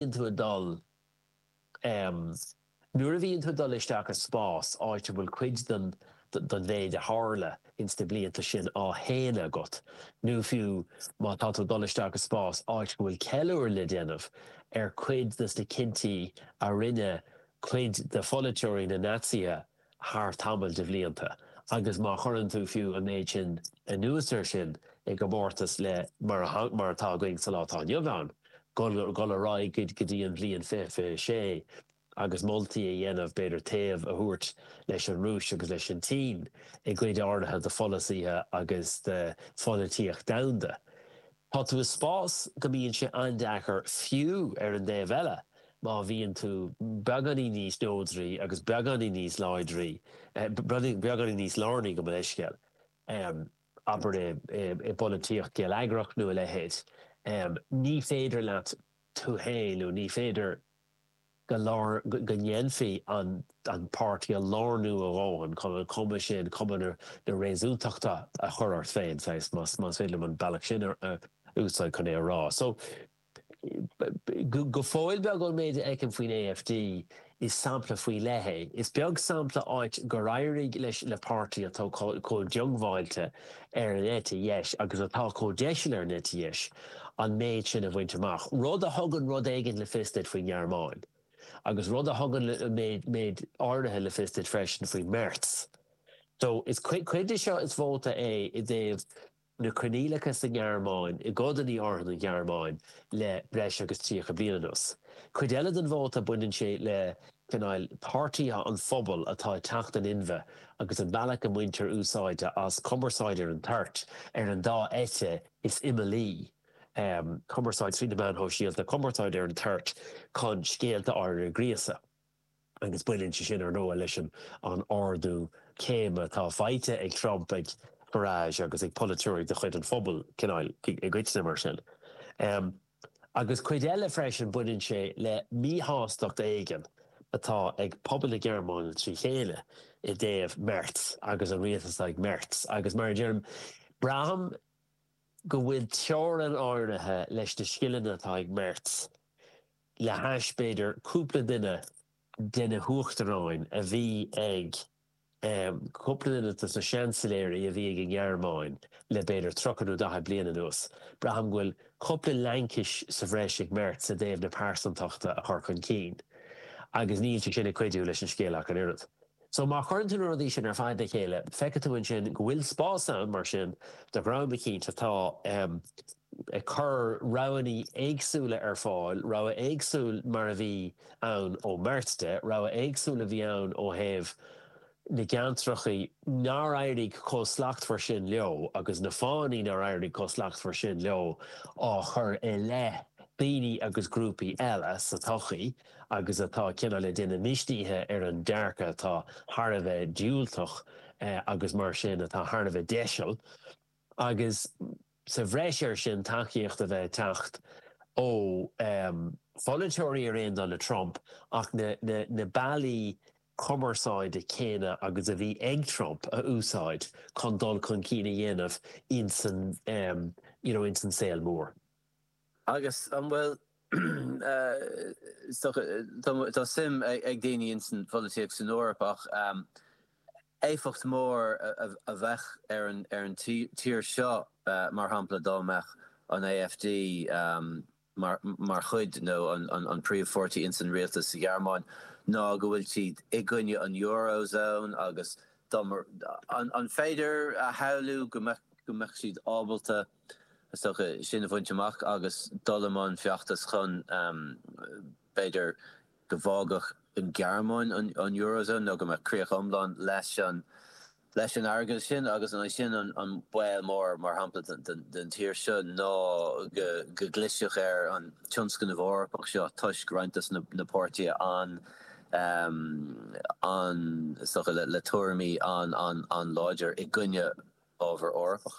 bhíonn tú ag dul, em. nuair a bhíonn tú ag dul isteach i spás, áit a bhfuil cuid den mhéid a tharla ins na blianta sin á shéanadh agat, nó fiú má tá tú ag dul isteach i spás, áit go bhfuil ceiliúradh le déanamh ar chuid des na cinntí a rinne cuid de pholaiteoirí na Naitsithe, thar tamall de bhlianta agus má chuireann tú fiú an méid sin anuas air sin i gcomórtas le mar atá againn sa lá atá inniu ann, dul ar aghaidh go dtí an bhliain 2026 agus moltaí a dhéanamh, b'fhéidir taobh a thabhairt leis an Rúis agus leis an tSín i gcuid áirithe de pholasaithe agus de pholaitíocht domhanda, Tá tú i spás go mbíonn sé an-deacair fiú ar an dtaobh eile má bhíonn tú beagáinín níos neodraí agus beagáinín níos láidrí, beagáinín níos lárnaí gabh mo leithscéal, abair i bpolaitíocht geilleagrach nó a leithéid, ní féidir leat tú féin nó ní féidir. go ndéanfaí an páirtí a lárnú a dhóthain chun an chuma sin, cuma na réasúntachta, a chur ort féin, saghas, más féidir liom an bealach sin a úsáid chun é a rá. So, go fóill beag ón méid a fheicim faoin AfD, is sampla faoi leith é. Is beag sampla áit gur éirigh leis, le páirtí atá chomh diongbháilte ar an eite dheis agus atá chomh deiseal ar an eite dheis an méid sin a bhaint amach, rud a thugann rud éigin le fios duit faoin nGearmáin, agus rud a thugann méid áirithe le fios duit freisin faoi Merz. So, cuid de seo is vóta é i dtaobh na coinníollacha sa nGearmáin, i gcodanna áirithe den Ghearmáin, le breis agus 30 bliain anuas. Cuid eile den vóta, baineann sé le. cineál páirtithe an phobail atá ag teacht in inmhe agus an bealach a mbaintear úsáid as cumarsáid ar an toirt ar an dá eite is imeallaí, cumarsáid trí na meáin shóisialta, cumarsáid ar an toirt chun scéalta áirithe a ghríosadh. Agus baineann sé sin, ar ndóigh, leis an ardú céime atá faighte ag Trump, ag Farage agus ag polaiteoirí de chuid an phobail, cineál, i gcoitinne. Mar sin. agus cuid eile freisin baineann sé le míshástacht éigin atá ag pobal na Gearmáine trí chéile i dtaobh Merz agus an rialtas atá ag Merz, agus mar a deirim, braithim go bhfuil teorainn áirithe leis na scileanna atá ag Merz le hais, b'fhéidir, cúpla duine de na huachtaráin a bhí ag. Cúpla duine dos na seansailéirí a bhí ag an nGearmáin le b'fhéidir tríocha nó daichead bliain anuas, braithim go bhfuil cúpla laincis sa bhreis ag Merz i dtaobh na pearsantachta a chur chun cinn. Agus níl sé sin ag cuidiú leis an scéal ach an oiread. So má chuireann tú na rudaí sin ar fad le chéile, feicfidh tú ansin go bhfuil spás ann mar sin do dhream eicínt atá, ag cur roghannaí éagsúla ar fáil, rogha éagsúil mar a bhí ann ó Merkel, rogha éagsúil a bhí ann ó thaobh na gceantrachaí nár éirigh chomh slachtmhar sin leo agus na fáthanna nár éirigh chomh slachtmhar sin leo á chur i leith daoine agus grúpaí eile sa tsochaí agus atá cineál daoine misnithe ar an dearcadh atá thar a bheith diúltach agus mar sin atá thar a bheith deiseal agus. sa bhreis air sin, tacaíocht a bheith ag teacht ó pholaiteoirí ar aon dul le Trump ach na bealaí cumarsáide céanna agus a bhí ag Trump a úsáid chun dul chun cinn a dhéanamh insan saol mór. Agus an bhfuil, is dócha, tá suim ag daoine ins an pholaitíocht san Eoraip ach éifeacht mór a bheadh ar an tír seo mar shampla dá mbeadh an AfD mar chuid nó an príomh pháirtí ins an rialtas sa Ghearmáin ná go bhfuil siad i gcoinne an Euro Zone agus dá mbeadh, an féidir a shamhlú go mbeadh siad ábalta. Is dócha sin a bhaint amach agus dul i mbun feachtais chun, b'fhéidir, go bhfágfadh an Ghearmáin an Eurozone nó go mbeadh críoch iomlán leis an airgead sin agus ansin an baol mór, mar shampla, don tír seo ná go gclisfeadh ar an tionscnamh Eorpach seo toisc roinnt de na páirtithe is dócha le tuairimí an-láidir i gcoinne ábhar Eorpach.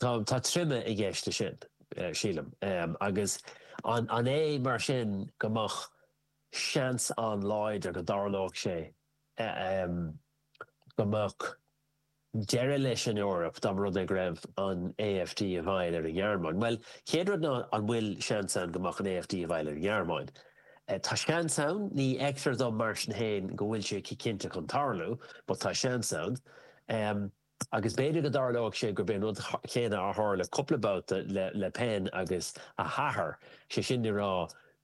Tá troime i gceist sin, sílim. Agus an é mar sin go mbeadh seans an-láidir go dtarlódh sé go mbeadh deireadh leis an Eoraip dá mba rud é go raibh an AfD i bhfeighil ar an nGearmáin? Bhuel, chéad rud ná an bhfuil seans ann go mbeadh an AfD i bhfeighil ar an nGearmáin? Tá seans ann, ní fheictear dom mar sin féin go bhfuil sé cinnte chun tarlú, but tá seans ann. Agus b'fhéidir go dtarlóidh sé gurb é an rud céanna a tharla cúpla babhta le Le Pen agus a hathair, sé sin le rá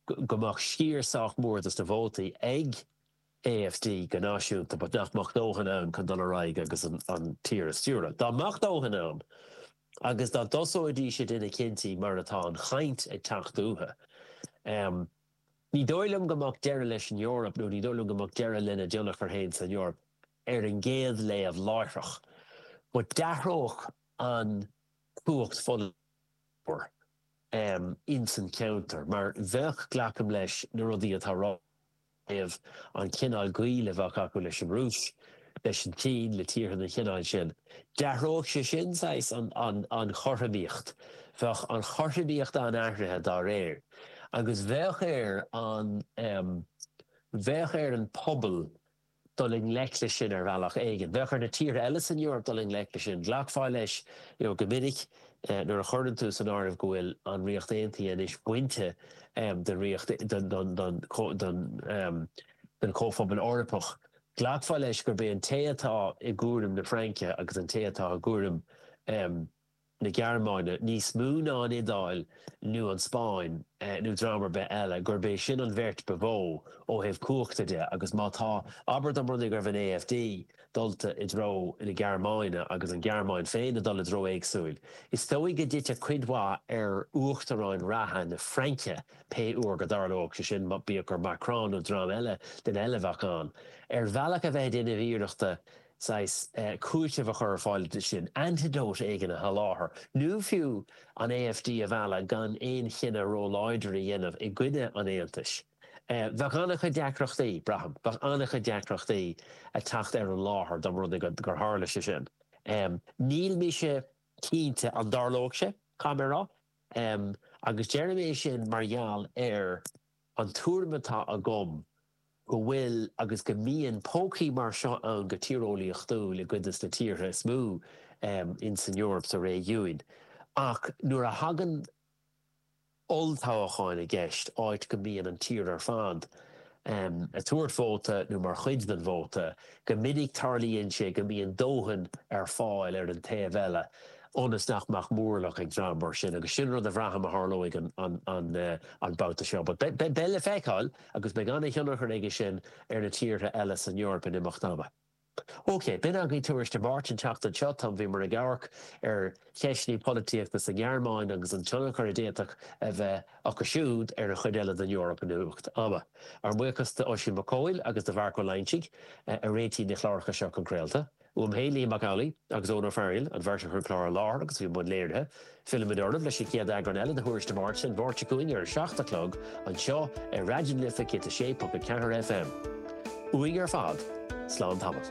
go mbeadh sciar sách mór dos na vótaí ag AfD go náisiúnta but nach mbeadh dóthain ann chun dul ar aghaidh agus an tír a stiúradh. Dá mbeadh dóthain ann, agus dá dtosóidís ag déanamh cinntí mar atá an chaint ag teacht uathu, ní dóigh liom go mbeadh deireadh leis an Eoraip nó ní dóigh liom go mbeadh deireadh lena dtionchar féin san Eoraip. ar an gcéad léamh láithreach, go n-athródh an chumhacht ollmhór ins an cheantar, mar bheadh, glacaim leis, na rudaí atá ráite inniu, an cineál gaoil a bheadh acu leis an Rúis, leis an tSín, le tíortha den chineál sin, d'athródh sé sin, saghas, an chothromaíocht. Bheadh an chothromaíocht an-athraithe dá réir. Agus bheadh ar an, bheadh ar an bpobal dul i ngleic leis sin ar bhealach éigin. Bheadh ar na tíortha eile san Eoraip dul i ngleic leis sin. Ghlacfá leis go minic nuair a chuireann tú san áireamh go bhfuil an Ríocht Aontaithe anois bainte den Ríocht, den Chomhphobal Eorpach, ghlacfá leis gurb é an té atá i gcúram na Fraince agus an té atá i gcúram. na Gearmáine níos mó ná an Iodáil nó an Spáinn nó dream ar bith eile, gurb é sin an bheirt ba mhó ó thaobh cumhachta de, agus má tá, abair dá mba rud é go raibh an AfD dulta i dtreo na Gearmáine agus an Ghearmáin féin ag dul i dtreo éagsúil, is dóigh go dtitfeadh cuid mhaith ar uachtaráin reatha na Fraince, pé uair go dtarlódh sé sin, bíodh gur Macron nó dream eile den eite a bheadh ann. Ar bhealach a bheith ag déanamh iarrachta saghas cúitimh a chur ar fáil dó sin, antidote éigin a sholáthar, nó fiú an AfD a mhealladh gan aon chinneadh róláidir a dhéanamh i gcoinne an Aontais. Bheadh an-chuid deacrachtaí, braithim, bheadh an-chuid deacrachtaí ag teacht ar an láthair dá mba rud é gur tharla sé sin. Níl mise cinnte an dtarlódh sé, caithfidh mé a rá, agus deirim é sin mar gheall ar an tuairim atá agam, go bhfuil agus go mbíonn pócaí mar seo ann go tíreolaíochtúil i gcuid des na tíortha is mó insan Eoraip, sa réigiúin. Ach nuair a thagann olltoghacháin i gceist, áit go mbíonn an tír ar fad ag tabhairt vóta nó mar chuid den vóta, go minic tarlaíonn sé go mbíonn dóthain ar fáil ar an taobh eile ionas nach mbeadh móramh ag dream mar sin. Agus sin rud a bhraithim a tharlóidh an babhta seo. But beidh le feiceáil. agus beidh an-thionchar aige sin ar na tíortha eile san Eoraip in imeacht ama. OK, b'in agaibh Tuairisc na Máirte an tseachtain seo. Tá, bhíomar ag amharc ar cheisteanna polaitíochta sa nGearmáin agus an tionchar a d'fhéadfadh a bheith acu siúd ar an chuid eile den Eoraip in imeacht ama. Ár mbuíochas d'Oisín Mac Cóil agus do Mharc Ó Loingsigh a réitigh na cláracha seo chun craolta. Uaim féin, Liam Mac Amhlaidh agus Eoin Ó Fearghail, an bheirt a chuir an clár i láthair agus a bhí i mbun léirithe. Fillfimid oraibh leis an chéad eagrán eile de Thuairisc na Máirte, an Mháirt seo chugainn ar a seacht a chlog, anseo ar Raidió na Life 106.4 FM. Uainn ar fad, slán tamall.